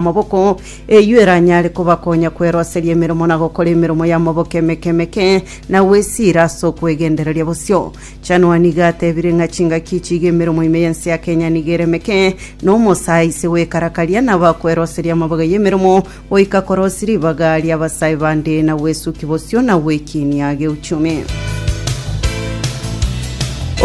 Amaboko eyio eranyare kobakonya kweroseria emeremo na gokora emeremo y'amaboko emeke emeke na gwesiira ase okwegendereria bosio. Chanua nigo atebire ng'a chingaki echi iga emeremo ime y'ense ya Kenya nigo ere emeke, na omosae aise gwekarakaria nabo akweroseria amabaga y'emeremo goika korosia ribaga ri'abasae bande na gwesuki bosio na gwekiinia geuchumi.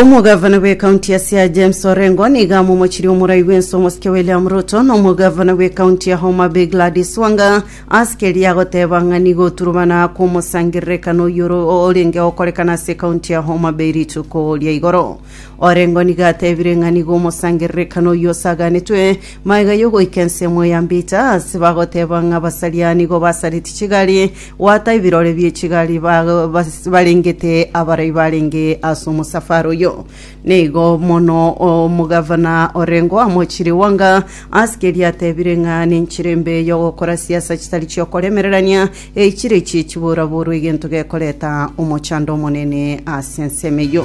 Omogavana bw'ekaunti ya Siaya James Orengo nigo amomochirie omorai bw'ense omosike William Ruto na omogavana bw'ekaunti ya Homa Bay Gladys Wanga ase keria agoteba ng'a nigo oturubana kw'omosangererekano oyio oro- orenge gokorekana ase ekaunti ya Homa Bay rituko ria igoro. Orengo nigo atebire ng'a nigo omosangererekano oyio osaganetwe magega y'ogoika ensemo ya Mbita ase bagoteba ng'a abasaria nigo basareti chigari Goata ebirore bie chigari ba- bas- barengete abarai barenge ase omosafari oyo. Nigo mono omogavana orengeo amochire Wanga ase keria atebire ng'a nenchera embe y'ogokora siasa chitari chi'okoremererania eichire echie chiboraborwe egento gekoreta omochando omonene ase ensemo eyio.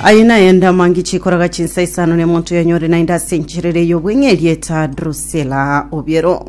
Aye naye ndamangi chikoraga chinsa isano nemonto yanyore naende ase encherera ey'obweng'eria eta Drusela Obiero.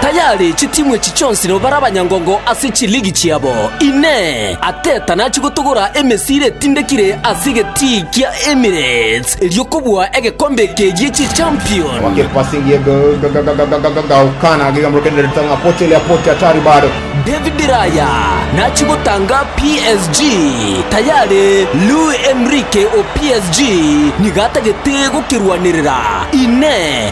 tayari chitimu echi chionsi nigo bare abanyangongo ase chiligi chiabo. Inee! Arteta nachie gotogora emesiri etindekire ase egetii kia Emirates erio kobua egekombe eke gie chichampion? Wake passing ye Gaukana giga morokereria reta ng'a Pote le Pote hatari bado. David Raya nachie gotanga PSG tayari Luis Enrique o PSG nigo atagete gokerwanerera. Inee!